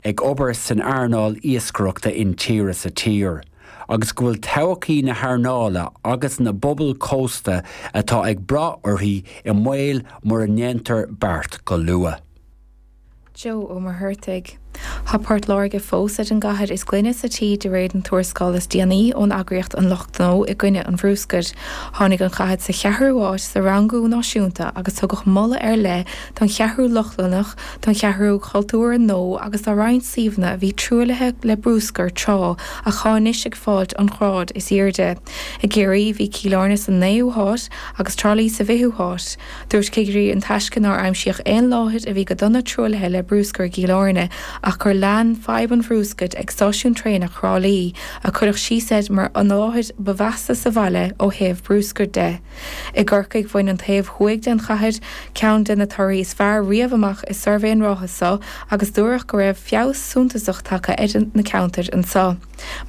ag obair san earnáil iascaireachta intíre sa tír, agus go bhfuil todhchaí na hearnála agus na bpobal cósta atá ag brath uirthi i mbaol mura ndéantar beart go luath. Joe Ó Muircheartaigh. Tá Port Láirge fós ar an gcathair is glaine sa tír de réir an tuarascáil is déanaí ón eagraíocht An Lucht Gnó i gcoinne an Bhruscair. Tháinig an chathair sa cheathrú háit sa rangú náisiúnta agus tugadh moladh ar leith don Cheathrú Lochlannach, don Cheathrú Chultúir nua agus do roinnt suíomhanna a bhí truaillithe le bruscar tráth ach atá anois ag fáilt an ghrád is aoirde. I gCiarraí bhí Cill Airne san naoú háit agus Trá Lí sa bhfichiú háit. Dúirt cigirí an Taisce nár aimsíodh aon láthair a bhí go dona truaillithe le bruscar i gCill Airne ach gur lean fadhb an bhruscair ag Stáisiún Traenach Thrá Lí, a cuireadh síos air mar an láthair ba mheasa sa bhaile ó thaobh bruscair de. I gCorcaigh, bhain an taobh thuaidh den chathair ceann de na torthaí is fearr riamh amach i suirbhé an ráithe so agus dúradh go raibh feabhas suntasach tagtha ar na ceantair san.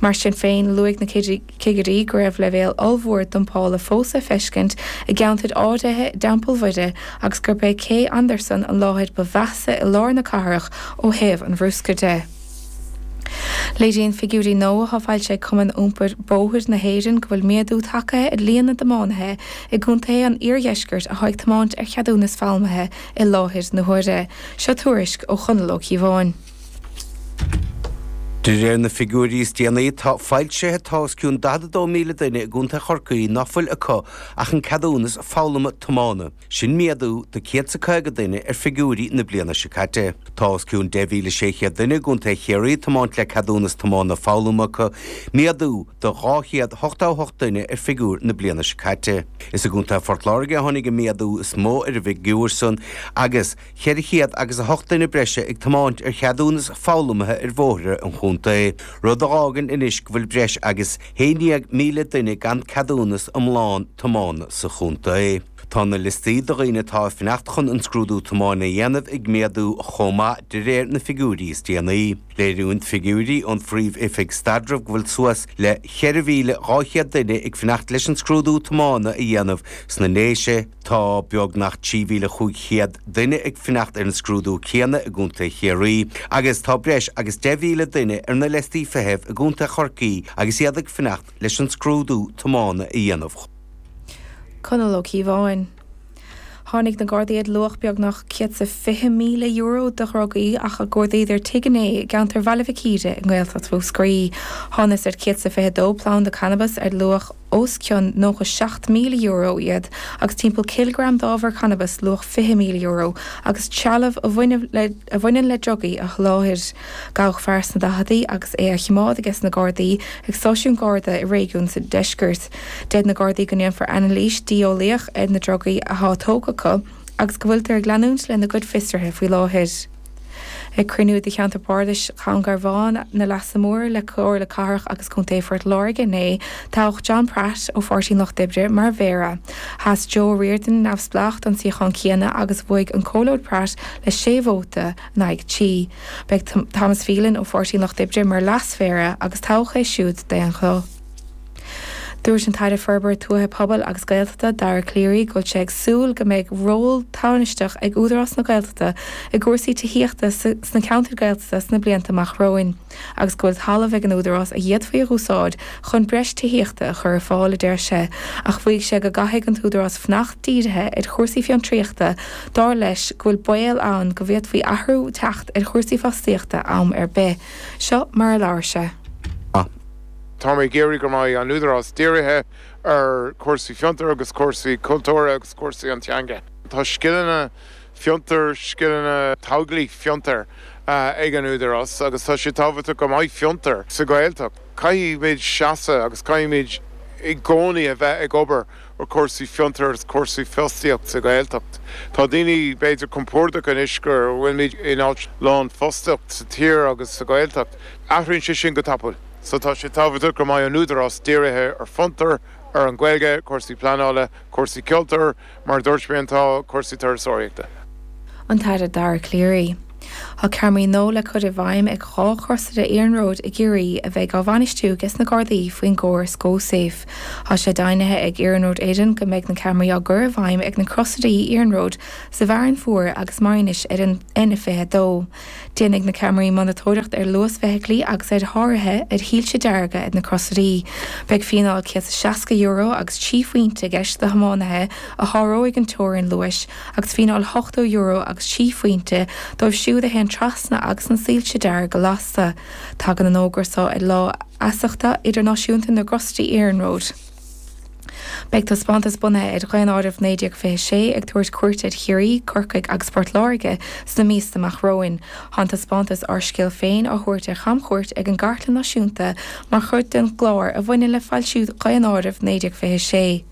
Mar sin féin, luaigh na cigirí go raibh leibhéal ollmhór dumpála fós le feiscint i gceantair áirithe i dTeampall Mairéad agus gurb é Cé Anderson an láthair ba mheasa i lár na cathrach ó thaobh an bhruscair de. Léiríonn figiúirí nua atá foilsithe ag Cumann Iompair Bóthair na hÉireann go bhfuil méadú tagtha ar líon na dtiománaithe i gcontaetha an iardheiscirt atá ag tiomáint ar cheadúnas foghlama i láthair na huaire. Seo tuairisc ó Chonall Ó Cíobháin. De réir na figiúirí is déanaí atá foilsithe tá os cionn 42,000 duine i gContae Chorcaí ná fuil acu ach an ceadúnas foghlama tiomána. Sin méadú de 150 duine ar figiúirí na bliana seo caite. Tá os cionn 10,600 duine i gContae Chiarraí ag tiomáint le ceadúnas tiomána foghlama acu, méadú de 288 duine ar figiúr na bliana seo caite. Is i gContae Phort Láirge a tháinig an méadú is mó ar an bhfigiúr san agus, cheithre chéad agus a hocht duine breise ag tiomáint ar cheadúnas foghlama ar bhóithre an chontae, rud a dh'fhágann anois go bhfuil breis agus haon dhéag míle duine gan ceadúnas iomlán tiomána sa chontae. Tá na liostaí de dhaoine atá ag fanacht chun an scrúdú tiomána a dhéanamh ag méadú chomh maith, de réir na figiúirí is déanaí. Léiríonn figiúirí ón Phríomh-Oifig Staidrimh go bhfuil suas le cheithre mhíle dhá chéad duine ag fanacht leis an scrúdú tiomána a dhéanamh sna Déise, Tá beagnach 3,500 duine ag fanacht ar an scrúdú céanna i gContae Chiarraí agus tá breis agus 10,000 duine ar na liostaí feithimh i gContae Chorcaí agus iad ag fanacht leis an scrúdú tiomána a dhéanamh. Conall Ó Cíobháin. Tháinig na Gardaí ar luach beagnach €120,000 de dhrugaí nuair a chuardaíodar tigh inné i gceantar Bhaile Mhic Íre i nGaeltacht Mhúscraí. Thánas ar 122 planda cannabais ar luach. os cionn €97,000 iad agus timpeall cileagram d'ábhar cannabais luach €20,000 agus trealamh a bhaineann le drugaí a sholáthar. Gabhadh fear sna daicheadaí agus é á chimeád ages na Gardaí ag stáisiún Garda i réigiún sa Deisceart. Deir na Gardaí go ndéanfar anailís dlí-eolaíoch ar na drugaí atá tógtha acu agus go bhfuiltear ag leanúint lena gcuid fiosruithe faoi láthair. Ag cruinniú de Cheantar Bardais Dhún Garbhán na Leasa Móire le Comhairle Cathrach agus Contae Phort Láirge inné, toghadh John Pratt ó Pháirtí an Lucht Oibre mar Mhéara. Sheas Joe Riordan, Neamhspleách, don suíochán céanna agus bhuaigh an Comhairleoir Pratt le sé vóta in aghaidh trí. Beidh Thomas Phelan ó Pháirtí an Lucht Oibre mar Leas-Mhéara agus toghadh é siúd d'aonghuth. Dúirt an tAire Forbartha Tuaithe Pobail agus Gaeltachta, Dara Calleary, go bhfuil sé ag súil go mbeidh ról tánaisteach ag Údarás na Gaeltachta i gcúrsaí tithíochta sna ceantair Ghaeltachta sna blianta amach romhainn agus go bhfuil talamh ag an Údarás a dh'fhéadfaí a úsáid chun breis tithíochta a chur ar fáil, a deir sé, ach mhaígh sé go gcaithfidh an tÚdarás fanacht dírithe ar chúrsaí fiontraíochta, dar leis go bhfuil baol ann go bhféadfaí athrú teacht ar chúrsaí fostaíochta am ar bith. Seo mar a labhair sé. Tá mé ag iarraidh go mbeidh an Údarás dírithe ar chúrsaí fiontar agus cúrsaí cultúra agus cúrsaí an teanga. Tá scileanna fiontar, scileanna tógála fiontar, ag an Údarás agus tá sé tábhachtach go mbeidh fiontar sa Ghaeltacht. Caithfimid seasamh agus caithfimid i gcónaí a bheith ag obair ar chúrsaí fiontair agus cúrsaí fostaíochta sa Ghaeltacht. Tá daoine, b'fhéidir, compordach anois go bhfuilimid in áit lánfhostaíocht sa tír agus sa Ghaeltacht. Athraíonn sé sin go tapaidh. So tá sé tábhachtach go mbeidh an Údarás dírithe ar fiontar, ar an Ghaeilge, cúrsaí pleanála, cúrsaí cultúir, mar a dúirt mé agus tá cúrsaí turasóireachta. An tAire Dara Calleary. Tá ceamaraí nua le cur i bhfeidhm ag dhá chrosaire iarnróid i gCiarraí a bheidh á bhainistiú ages na Gardaí faoin gcóras GoSafe. Tá sé deimhnithe ag Iarnród Éireann go mbeidh na ceamaraí á gcur i bhfeidhm ag na crosairí iarnróid sa bhFearann Fuar agus Maínis ar an N22. Déanfaidh na ceamaraí monatóireacht ar luas feithiclí agus ar sháruithe ar shoilse dearga ag na crosairí. Beidh fíneáil €160 agus 3 phointe i gceist do thiománaithe a sháróidh an teorainn luais. agus fíneáil €80 agus trí phointe dóibh siúd a théann trasna agus na soilse dearga lasta. Tagann an fógra seo ar Lá Feasachta Idirnáisiúnta na gCrosairí Iarnróid. Beidh taispeántas bunaithe ar Dhaonáireamh 1926 ag tabhairt cuairte ar Chiarraí, Corcaigh agus Port Láirge sna míosa amach romhainn. Tá an taispeántas Ár Scéal Féin á thabhairt ar chamchuairt ag an gCartlann Náisiúnta mar chuid den gclár a bhaineann le foilsiú Dhaonáireamh 1926.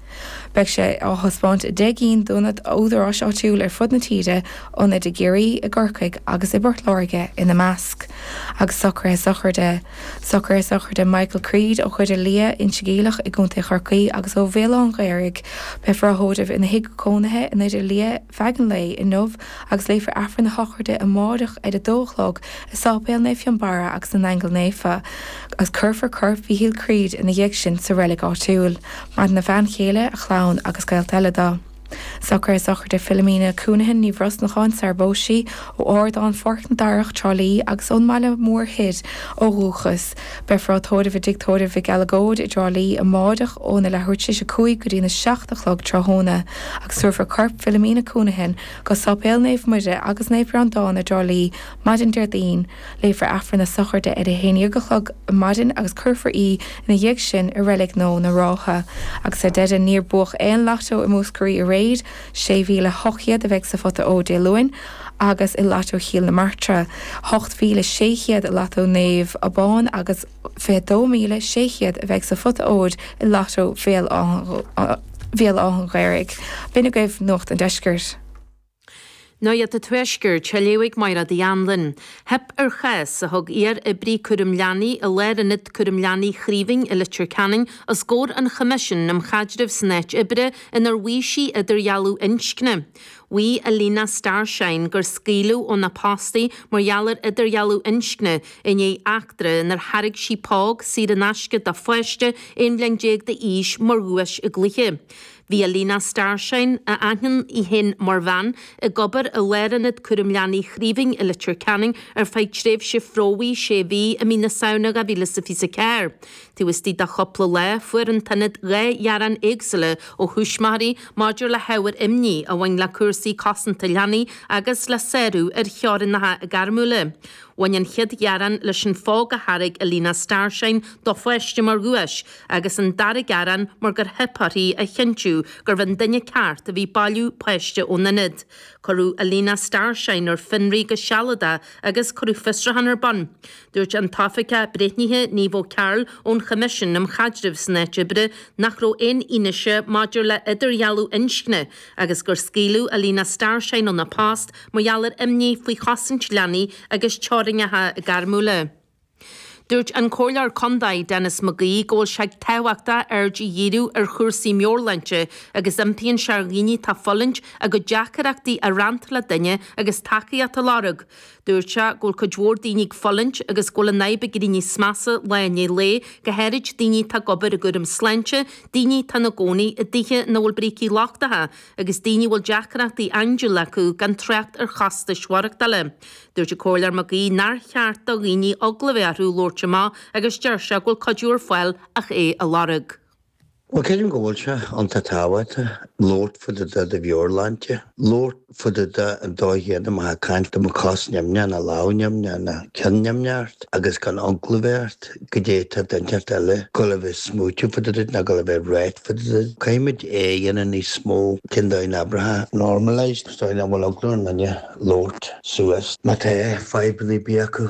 Beidh sé á thaispeáint i deich gcinn d'ionaid údaráis áitiúil ar fud na tíre, ionaid i gCiarraí, i gCorcaigh agus i bPort Láirge ina measc. Agus socruithe sochraide. Socruithe sochraide Michael Creed ó Dhoire Liath, Inse Geimhleach i gContae Chorcaí agus ó Bhéal Átha'n Ghaorthaidh. Beifear á thórramh ina thigh cónaithe i nDoire Liath, feadh an lae inniu agus léifear Aifreann na Sochraide amáireach ar a dó a chlog i Sáipéal Naomh Fionnbarra agus na nAingeal Naofa agus cuirfear corp Mhíchíl Creed ina dhiaidh sin sa reilig áitiúil, maireann a bhean chéile, a chlann agus gaolta eile do. Socruithe sochraide Philomena Counihan, Ní Bhrosnacháin, sarar phós sí, ó Ardán Pháirc na Darach, Trá Lí agus ón mBaile Mór Thoir ó dhúchas, Beifear á tórramh i dtigh tórraimh Mhic Uileagóid i dTrá Lí amáireach óna leathuair tar éis a cúig go dtí na seacht a chlog tráthnóna agus tabharfar corp Philomena Counihan go Sáipéal Naomh Muire agus Naomh Breandán i dTrá Lí maidin Déardaoin. Léifear Aifreann na Sochraide ar a haon déag a chlog ar maidin agus cuirfear í ina dhiaidh sin i Reilig Nua na Rátha. Agus ar deireadh, níor buadh aon Lató i Múscraí aréir. Sé mhíle hocht chéad a bheidh sa phota óir Dé Luain. agus i Lato Chill na Martra, 8,600 i Lato Naomh Abán agus 22,600 a bheidh sa phota óir i Lato Bhéal Átha'n Ghaorthaidh. B'in agaibh Nuacht an Deiscirt. Nuacht a' Tuaiscirt, á léamh ag Máire D. Anluain. Theip ar chás a thug iar-oibrí cúram leanaí i Lárionad Cúraim Leanaí Chraoibhín i Leitir Ceanainn os gcomhair an Choimisiúin um Chaidreamh san Áit Oibre inar mhaígh sí idirdhealú inscne Mhaígh Alina Starshine gur scaoileadh óna post í mar gheall ar idirdhealú inscne i ndiaidh eachtra inar thairg sí póg saor in aisce do pháiste 11 bhliain d'aois mar dhuais i gcluiche. Bhí Alina Starshine, a aithníonn í féin mar bhean, ag obair i Lárionad Cúraim Leanaí Chraoibhín i Leitir Ceanainn ar feadh tréimhse phromhaidh sé mhí i mí na Samhna 2024. Taobh istigh de chúpla lá, fuair an t-ionad dhá ghearán éagsúla ó thuismitheoirí maidir le hábhair imní a bhain le cúrsaí cosanta leanaí agus le sárú ar theorainneacha gairmiúla. Bhain an chéad ghearán leis an phóg a thairg Alina Starshine do pháiste mar dhuais agus an dara gearán mar gur theip uirthi a chinntiú gurbh é an duine ceart a bhí bailiú páiste ón ionad. Cuireadh Alina Starshine ar fionraí go sealadach agus cuireadh fiosrúchán ar bun. Dúirt an tOifigeach Breithnithe, Niamh O'Carroll, ón Choimisiún um Chaidreamh san Áit Oibre nach raibh aon fhianaise maidir le hidirdhealú inscne agus gur scaoileadh Alina Starshine óna post mar gheall ar imní faoi chosaint leanaí agus teorainneacha gairmiúla. Dúirt an Comhairleoir Contae, Denis McGee, go bhfuil sé tábhachtach aird a dhíriú ar chúrsaí meabhairshláinte agus impíonn sé ar dhaoine atá fulaingt a gcuid deacaireachtaí a roinnt le duine agus tacaíocht a lorg. Dúirt sé go bhfuil cuid mhór daoine ag fulaingt agus go bhfuil an fhadhb ag éirí níos measa lá i ndiaidh lae, go háirid daoine atá ag obair i gcúram sláinte, daoine atá ina gcónaí i dtithe ina bhfuil brící lochtacha, agus daoine a bhfuil deacrachtaí andúile acu, gan trácht ar chostais mhaireachtála. Dúirt an Comhairleoir Mac Aoidh nár cheart do dhaoine eagla a bheith orthu labhairt amach agus deir sé go bhfuil cuidiú ar fáil ach é a lorg. Bhuel creidim go bhfuil sé an-tábhachtach labhairt fá dtaobh de do mheabhairshláinte, labhairt fá dtaobh de an dóigh chéadna má tá tú ag caint dá mbeadh cos nimhneach ná lámh nimhneach ná ceann nimhneach ort agus gan eagla a bheith ort goidé atá duine inteacht eile ag gul a bheith ag smaoitiú fá dtaobh duit ná gul a bheith ag ráit fá dtaobh duit. Caithfimid é a dhéanamh níos mó cén dóigh a n-abrófá, normalised, sa dóigh nach bhfuil eagla ar aon duine labhairt suas má tá fadhbanna ar bith acu.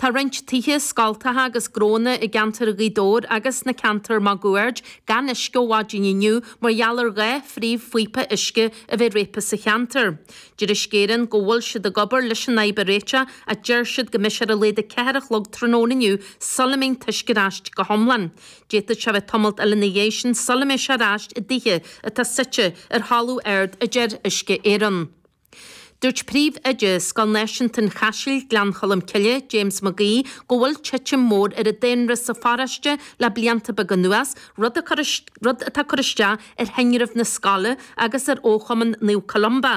Tá roinnt tithe scoltacha agus gnónna i gceantar Ghaoth Dobhair agus sna ceantair máguaird gan uisce ó mhaidin inniu mar gheall ar dhá phríomhphíopa uisce a bheith réabtha sa cheantar. Deir Uisce Éireann go bhfuil siad ag obair leis an fhadhb a réiteach ach deir siad go mbeidh sé ar a laghad 4 a chlog tráthnóna inniu sula mbíonn an t-uisce ar ais go hiomlán. D'fhéadfadh sé bheith tamalt eile ina dhiaidh sin sula mbeidh sé ar ais i dtithe atá suite ar thalamh ard a deir Uisce Éireann. Dúirt Príomh-Oide Scoil Náisiúnta an Chaisil, Gleann Cholm Cille, James McGee, go bhfuil titim mhór ar an daonra sa pharóiste le blianta beaga anuas, rud atá ag cur isteach ar thinreamh na scoile agus ar fhochumann Naomh Columba.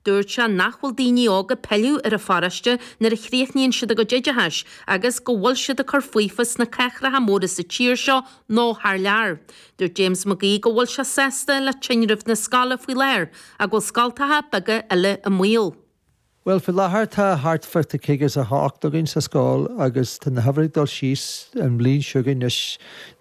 Dúirt sé nach bhfuil daoine óga ag pilleadh ar an pharóiste nuair a chríochnaíonn siad a gcuid oideachais agus go bhfuil siad ag cur faofa sna cathracha móra sa tír seo nó thar lear. Dúirt James McGee go bhfuil sé sásta le tinreamh na scoile faoi láthair ach go bhfuil scoltacha beaga eile i mbaol. Bhuel, faoi láthair tá thart fá 58 againn sa scoil agus tá na huimhreacha ag dul síos an bhliain seo chugainn anois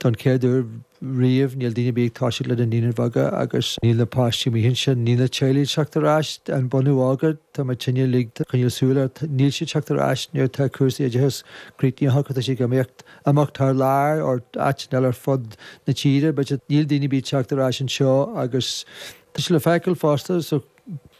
don chéad uair riamh níl daoine ar bith ag toiseacht le na naíonáin bheaga agus níl na páistí amuigh ansin, níl na teaghlaigh ag teacht ar ais, an bunadh óga, tá muidinne uilig ag coinneáil súil air, níl siad ag teacht ar ais nuair atá cúrsaí oideachais críochnaithe acu, tá siad ag imeacht. Amach thar lear nó áiteanna eile ar fud na tíre, but níl daoine ar bith ag teacht ar ais anseo agus tá sé le feiceáil fosta sa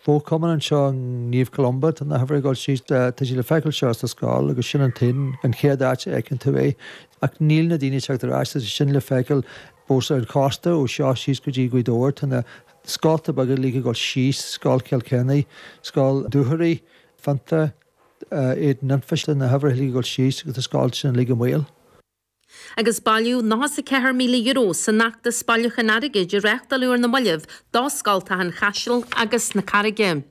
fhochumann anseo i Naomh Columba, tá na huimhreacha ag dul síos, tá sé le feiceáil anseo sa scoil agus sin an t-aon, an chéad áit a fheiceann tú é ach níl na daoine ag teacht ar ais, tá sé sin le feiceáil fós ar an chósta ó seo síos go dtí Gaoth Dobhair, tá na scolta beaga uilig ag dul síos, Scoil Chill Choinnigh, Scoil Dúchoraidh, Fintown, Éadan Anfa, tá na huimhreacha uilig ag dul síos, tá na scolta sin uilig i mbaol. agus bailíodh €94,000 san fheachtas bailiúcháin airgid a reáchtáladh ar na mallaibh do scoltacha an Chaisil agus na Carraige.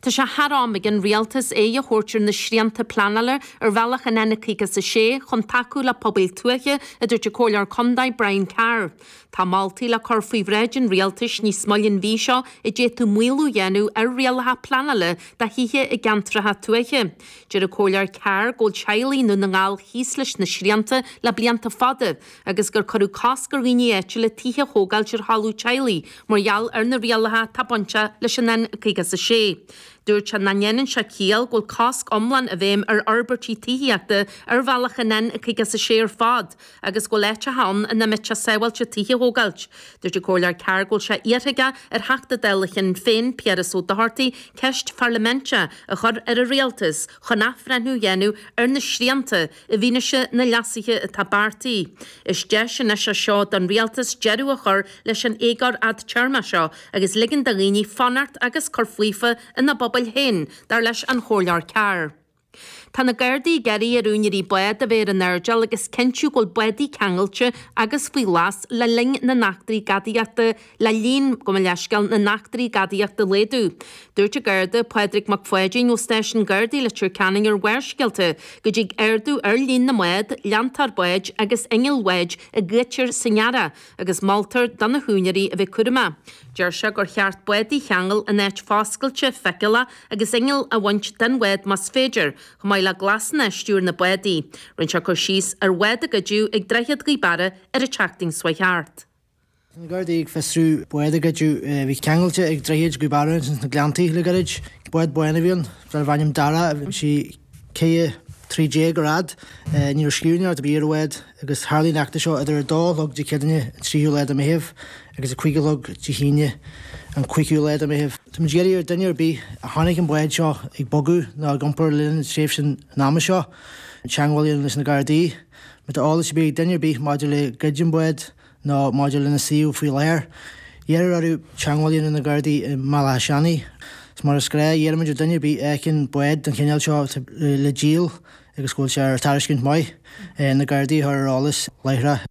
Tá sé thar am ag an Rialtas aghaidh a thabhairt ar na srianta pleanála ar bhealach an N56 chun tacú le pobail tuaithe, a dúirt an Comhairleoir Contae Brian Carr. Tá moltaí le cur faoi bhráid an Rialtais níos moille an mhí seo a d'fhéadfadh maolú a dhéanamh ar rialacha pleanála do thithe i gceantracha tuaithe. Deir an Comhairleoir Carr go bhfuil teaghlaigh i nDún na nGall thíos leis na srianta le blianta fada agus gur cuireadh cosc ar dhaoine áitiúla tithe a thógáilt ar thalamh teaghlaigh mar gheall ar na rialacha atá bainteach leis an N56. Dúirt sé nach ndéanann sé ciall go bhfuil cosc iomlán i bhfeidhm ar fhorbairtí tithíochta ar bhealach an N56 ar fad, agus go bhfuil áiteacha ann ina mbeadh sé sábháilte tithe a thógáilt. Dúirt an Comhairleoir Carr go bhfuil sé iarrtha aige ar Theachta Dála Shinn Féin, Piaras Ó Dochartaigh, ceist pharlaiminte a chur ar an Rialtas chun athbhreithniú a dhéanamh ar na srianta i bhfianaise na leasuithe atá beartaithe. Is deis anois é seo don Rialtas deireadh a chur leis an éagóir fhadtéarmach seo agus ligean do dhaoine fanacht agus cur faofa ina bpobail féin, dar leis an Chomhairleoir Carr. Tá na Gardaí ag iarraidh ar úinéirí bád a bheith san airdeall agus cinntiú go bhfuil bádaí ceangailte agus faoi ghlas le linn na n-eachtraí gadaíochta le líon gabh mo leithscéal na n-eachtraí gadaíochta a laghdú. Dúirt an Garda Pádraig Mac Pháidín ó Stáisiún Gardaí Leitir Ceanainn ar Bharrscéalta go dtig ardú ar líon na mbád, leantóir báid agus innill bháid a ghoidtear san earrach. agus moltar do na húinéirí a bheith cúramach. Deir sé gur cheart bádaí a cheangal in áit foscailte, feiceálach agus inneall a bhaint den bhád más féidir, chomh maith le glasanna ar stiúir na bádaí. Rinne sé cur síos ar bhád a goideadh ag Droichead Ghaoth Beara ar an tseachtain seo thart. Tá na Gardaí ag fiosrú bád a goideadh a bhí ceangailte ag Droichead Ghaoth Beara ins na Gleanntaí le gairid. Bád bán a bhí ann, darbh ainm Darragh, bhí sí. 13 troithe ar fhad, ní raibh inneall ar bith ar an bhád, agus tharlaigh an eachtra seo idir 2 a chlog Dé Céadaoine an 3ú lá de Meitheamh agus 5 a chlog Dé hAoine an 5ú lá de Meitheamh. Tá muid ag iarraidh ar duine ar bith a chonaic an bhád seo ag bogadh nó ag iompar le linn an tréimhse ama seo, teagmháil a dhéanamh leis na Gardaí. Má tá eolas ar bith ag duine ar bith maidir le goid an bháid nó maidir lena suíomh faoi láthair. iarrtar orthu teagmháil a dhéanamh leis na Gardaí i mBaile Átha Seanaidh, is mar is gnách iarraimid ar duine ar bith a fheiceann bád den chineál seo atá le díol agus go bhfuil sé ar tairiscint maith, na gardaí a chur ar an eolas láithreach.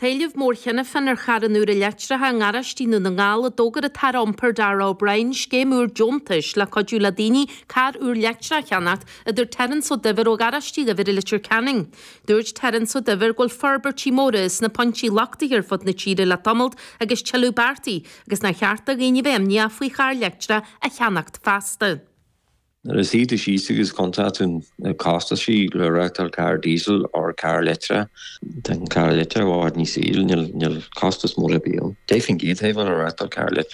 Tá éileamh mór cheana féin ar charranna úra leictreacha i ngaráistí i nDún na nGall, ó d'fhógair an tAire Iompair Darragh O'Brien scéim úr deontais le cuidiú le daoine carr úr leictreach a cheannacht, a dúirt Terence Ó Duibhir ó Gharáiste Uí Dhuibhir i Leitir Ceanainn. Dúirt Terence Ó Duibhir go bhfuil forbairtí móra sna pointí lochtaithe ar fud na tíre le tamalt agus tuilleadh beartaithe agus nár cheart do dhaoine a bheith imníoch faoi charr leictreach a cheannacht feasta. Nuair a shuíos tú síos agus cuntann tú na costaisí le reachtáil carr Diesel or carr leictreach. Tá an carr leictreach i bhfad níos ísle, níl costas mór ar bith ann. D'fhéadfainn gíotaibh ann a reachtáil carr leictreach.